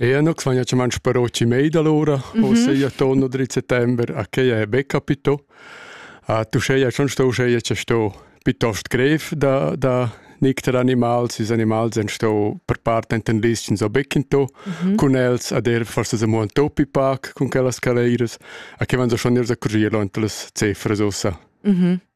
Eau nu s'vagna chamannsch parochi mei dalura, uschea torno dritt settember a quai è be capito. Uscheia sun sto uscheia cha sto piitost grev da da nicter animals, ils animals han sto per part enten lizchens o beccinto cun els ad eir forsas amo ün topi pac cun quellas caleiras, a que van so schon gnir a currier lont las cefras ussa.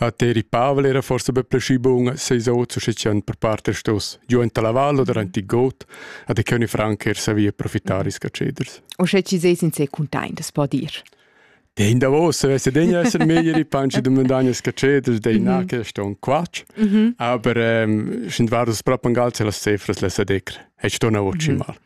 A Teri Pavel era forsa be pleschi bun seis oz sche tschient per part er stos giu enta la val oder ant il got, a de che ogni franc er savia profittar is caceders. O sche ci seis in se containtes, po dir. Den davos vesse degna esser meglier i panci de mondagnas caceders dei na che ston quac. Aber ähm, sind war das proppen gal las cefras la sadecr. E sto na voci mal.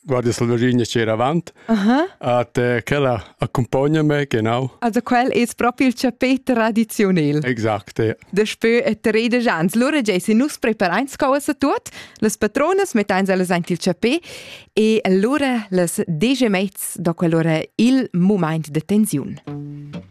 guardi sulla linea c'era avant. Uh-huh. At eh, quella accompagna me, genau. Also quel es proprio il chapè tradizionel. Exact, ja. Daspö e tredesch ans. Lura giai sin nus preparains cauas a tuot, las patronas metteins ellas aint il chapè e lura las degemets da quell'ora il moment de tensiun.